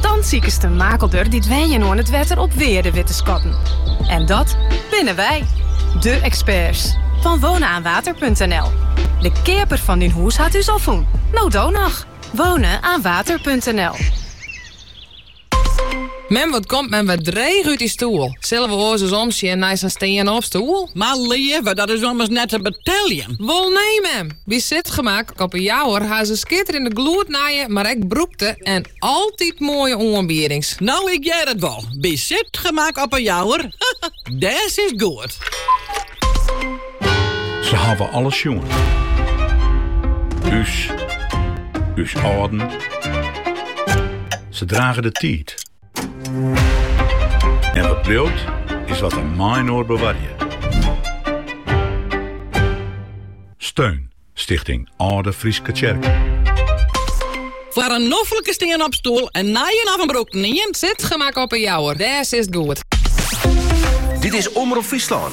Dan sikest de makelder dy't wenjen oan it wetter op wearde wit te skatten. En dat binne wy, de eksperts fan wonenaanwater.nl. De keaper fan dyn hûs hat ús al fûn, no do noch! Wonenaanwater.nl. Mem, wat komt mem wer dreech út dy stoel. Sille we oars ris omsjen nei sa'n stean-op-stoel? Mar leave, dat is ommers net te beteljen. Wol nee, mem! By Zitgemak op 'e Jouwer ha se skitterende gloednije, mar ek brûkte en altyd moaie oanbiedings. No ik hear it wol, by Zitgemak op 'e Jouwer, dêr sitst goed. Se hawwe alles sjoen, ús, ús âlden. Se drage de tiid. En wat bliuwt, is wat we mei-inoar bewarje. Steun Stichting Alde Fryske Tsjerken. Foar in noflike stean-op-stoel, in nije of in brûkten ien, Zitgemak op 'e Jouwer. Dêr sitst goed. Dit is Omrop Fryslân.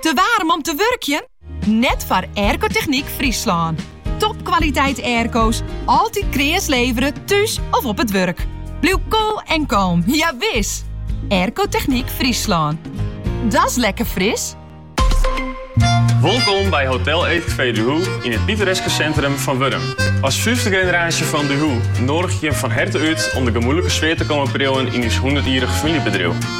Te waarm om te wurkjen? Net foar Aircotechniek Fryslân. Topkwaliteit airco's, altyd kreas levere, thús of op it wurk. Bliuw koel en kalm, ja wis! Aircotechniek Fryslân. Dat's lekker fris! Wolkom by Hotel Eetcafé Duhoux yn it pittoreske sintrum fan Wurdum. As fyfde generaasje fan Duhoux noadigje jim fan herte út om de gemoedlike sfear te komme priuwen yn ús hûndertjierrich famyljebedriuw.